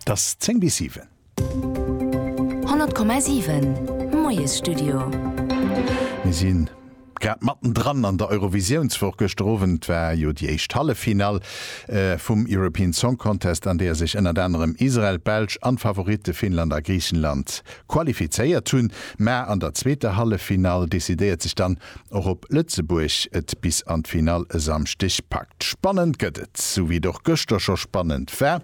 't ass 10 bis 7. 100,7, Moiesstudio. Mir si grad mattendran an der Eurovisiounswoch. Gëschter Owend war jo déi éischt Halleffinall vum European Song Contest, an deeër sech ënnert anerem Israel, d'Belsch an d'Favoritte Finnland a Griichenland Qualifizéiert hunn, mä an der zweeter Halleffinall decidéiert sech dann och op Lëtzebuerg et bis an d'Finall e Samschdeg packt. Spannend gëtt et, sou wéi et och gëschter scho spannend war,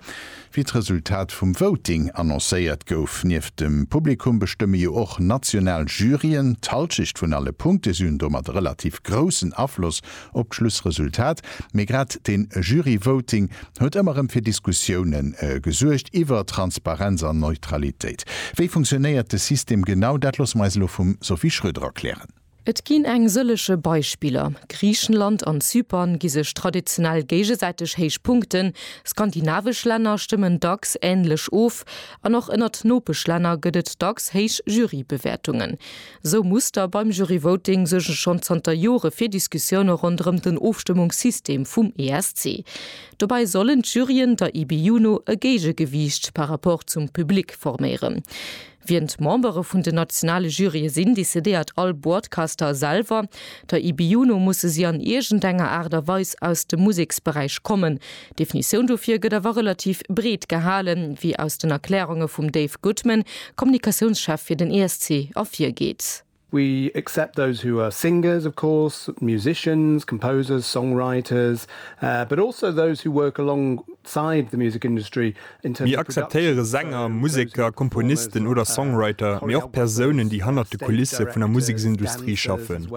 wéi d'Resultat vum Voting annoncéiert gouf. Nieft dem Publikum bestëmme jo och national Juryen d'Halschecht vun alle Punkte, si hunn domat e relativ groussen Afloss op d'Schlussresultat, mee grad de Jury-Voting huet ëmmer rëm fir Diskussiounen gesuergt iwwer Transparenz an Neutralitéit. Wéi funktionéiert de System genau? Dat loosse mer eis elo vum Sophie Schröder erklären. Et ginn eng sëllege Beispiller, Griichenland an Zypern gi sech traditionell géigesäiteg héich Punkten, skandinavesch Länner stëmmen dacks änlech of an och ënnert Nopeschlänner gëtt et dacks héich Jury-Bewäertungen. Esou Muster beim Juryvoting suerge schonn zanter Jore fir Diskussioune ronderëm den Ofstëmmungssystem vum ESC. Dobäi sollen d'Juryen der IBU no e Géigegewiicht par Rapport zum Public forméieren. Wien d'Membere vun den nationale Jurye sinn, decidéiert all Broadcaster selwer. Der IBU no musse si an iergendenger Aart a Weis aus dem Museksberäich kommen, D'Definitioun dofir gëtt awer relativ breet gehalen, wéi aus den Erklärunge vum Dave Goodman, Kommunikatiounschef fir den ESC, ervirgeet. We accept those who are singers, of course, musicians, composers, songwriters, but also those who work alongside the music industry, Mir akzeptéiere Sänger, Museker, Komponisten oder Songwriter, mee och Persounen, déi hannert de Kulisse vun der Museksindustrie schaffen,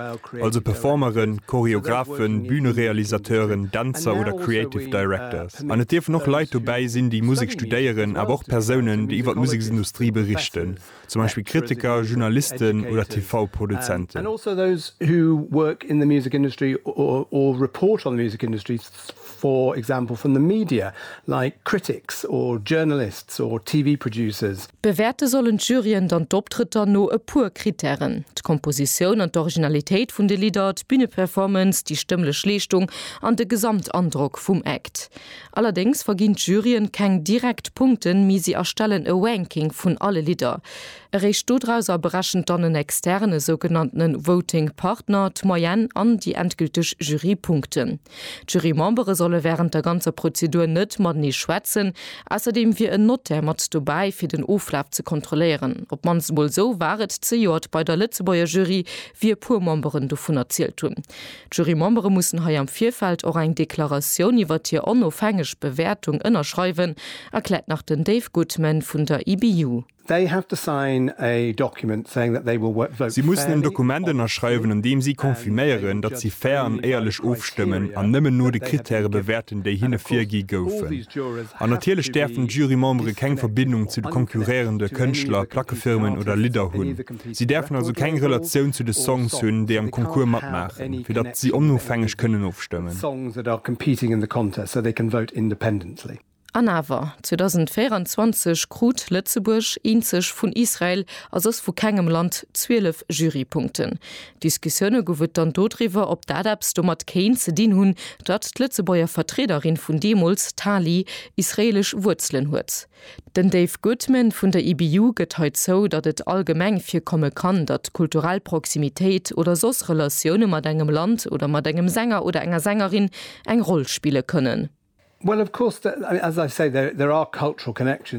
also Performeren, Choreographen, Bühnerealisateuren, Dänzer oder Creative Directors. An et dierfen och Leit dobäi sinn, déi Musek studéieren, awer och Persounen, déi iwwer d'Museksindustrie berichten. zum Beispill Kritiker, Journalisten oder TV-Produzenten. Bewäerte sollen d'Juryen dann d'Optrëtter no e puer Krittären, d'Kompositioun an d'Originalitéit vun de Lidder, d'Büneperformance, déi stëmmlech Leeschtung an de Gesamtandrock vum Act. Allerdéngs verginn d'Juryen keng direkt Punkten, mee si erstellen e Ranking vun alle Lidder. Eréischt dodrauser berechent dann en Externen, e sougenannte Voting Partner, d'Moyenne an déi endgülteg Jurypunkten. D'Jurymembere solle wärend der ganzer Prozedur net matenee schwätzen. Ausserdeem wier en Notaire mat dobäi, fir den Oflaf ze kontrolléieren. Op d'mannst emol esou war et zejoert bei der Lëtzebuerger Jury, wéi e puer Memberen dovun erzielt hunn. D'Jurymembere mussen hei am Virfeld och eng Deklaratioun iwwert hir onofhängeg Bewäertung ënnerschreiwen, erkläert nach den Dave Goodman vun der IBU. Si mussen en Dokument ënnerschreiwen, an deem si confirméieren, datt si fair an éierlech ofstëmmen an nëmmen no de Krittäre bewäerten, déi hinne virgi goufen. An natierlech däerfen d'Jurymembere keng Verbindung zu de konkurréierende Kënschtler, Plackefirmen oder Lidder hunn. Si däerfen also keng Relatioun zu de Songs hunn, déi am Concours matmaachen, fir datt si onofhängeg kënnen ofstëmmen. An awer, 2024 krut Lëtzebuerg, eenzeg vun Israel a soss vu kengem Land, 12 Jurypunkten. Diskussioune gouf et dann dodriwwer, ob dat eppes domat kéint ze dinn hunn, datt d'Lëtzebuerger Vertriederin vun deemools, d'Tali, israeelesch Wuerzelen huet. Den Dave Goodman vun der IBU gëtt hei zou, datt et allgemeng virkomme kann, datt kulturell Proximitéit oder soss Relatioune mat engem Land oder mat engem Sänger oder enger Sängerin eng Roll spille kënnen.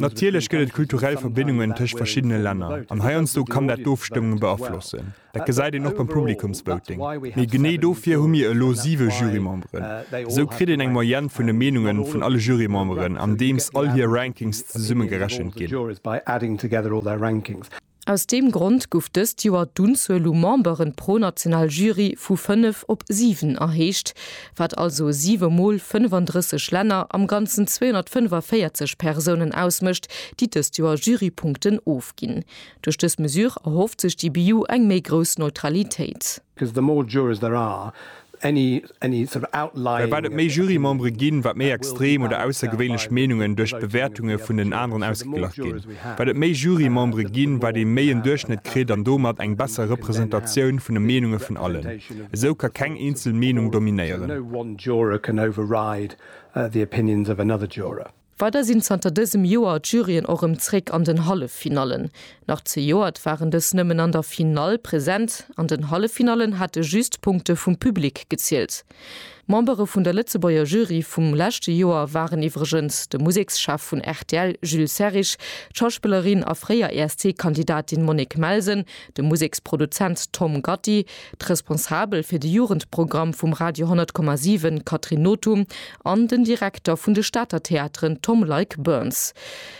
Natierlech gëtt et kulturell Verbindungen tëscht verschiddene Länner an heiansdo kann dat d'Ofstëmmung beaflossen. Dat gesäit een och beim Publikumsvoting. Mee genee dofir hu mir elo siwe Jurymemberen. Esou kritt een eng Moyenne vun de Meenunge vun alle Jurymemberen, andeems all hir Rankings zesumme gerechent ginn. Aus deem Grond gouf dëst Joer d'Unzuel u Memberen pro national Jury vu fënnef op siwen erhéicht, wat also siwe Mol 35 Länner, am Ganzen 245 Persounen ausmécht, déi dëst Joer Jurypunkten ofginn. Duerch dës Mesure erhofft sech d'IBU eng méi grouss Neutralitéit. Well wat et méi Jurymembere ginn, wat méi extrem oder aussergewéinlech Meenungen duerch d'Bewäertunge vun den aneren ausgeglach ginn. Wat et méi Jurymembere ginn, wat ee méi en Duerchschnëtt kritt an domat eng besser Representatioun vun de Meenunge vun allen. Esou ka keng eenzel Meenung dominéieren. Weider sinn zanter dësem Joer d'Juryen och rëm zréck an den Halleffinallen. Nach zejoert waren dës nëmmen an der Finall present. An den Halleffinallen hate just d'Punkte vum Public gezielt. Membere vun der Lëtzebuerger Jury vum leschte Joer waren iwwregens de Musekschef vun rtl Jules Serrig, d'Schauspillerin a fréier ESC-Kandidatin Monique Melsen, de Museksproduzent Tom Gatti, d'Responsabel fir de Jugendprogramm vum Radio 100,7 Catherine Nothum an den Direkter vun de Stater Theateren Tom Leick Burns.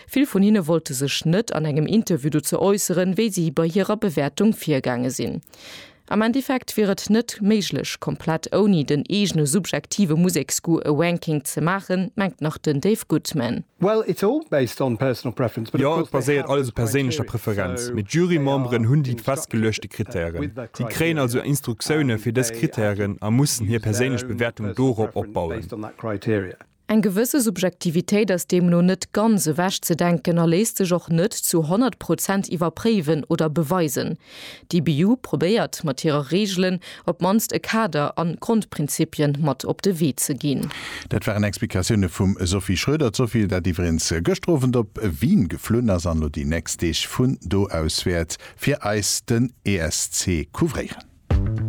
Vill vun hinne wollte sech net an engem Interview dozou äusseren, wéi si bei hirer Bewäertung virgaange sinn. Am Endeffekt wier et net méiglech, komplett ouni den eegene subjektive Museksgoût e Ranking ze maachen, mengt nach den Dave Goodman. Well it's all based on personal preference. Jo, et baséiert alles op perséinlecher Preferenz, mee d'Jurymemberen hunn déi festgeluechte Krittären. Si kréien also Instruktioune fir dës Krittären a mussen hir perséinlech Bewäertung dorop opbauen. Eng gewësse Subjektivitéit ass deemno net ganz ewechzedenken a léisst sech och net zu 100 Prozent iwwerpréiwen oder beweisen. D'IBU probéiert mat hirer Reegelen op d'mannst e Kader an Grondprinzipien mat op de Wee ze ginn. Dat waren Explikatioune vum Sophie Schröder. D'Sophie, dat iwwereens gëschter Owend op Wien geflunn ass an elo déi nächst Deeg vun do aus wäert fir eis den ESC couvréieren.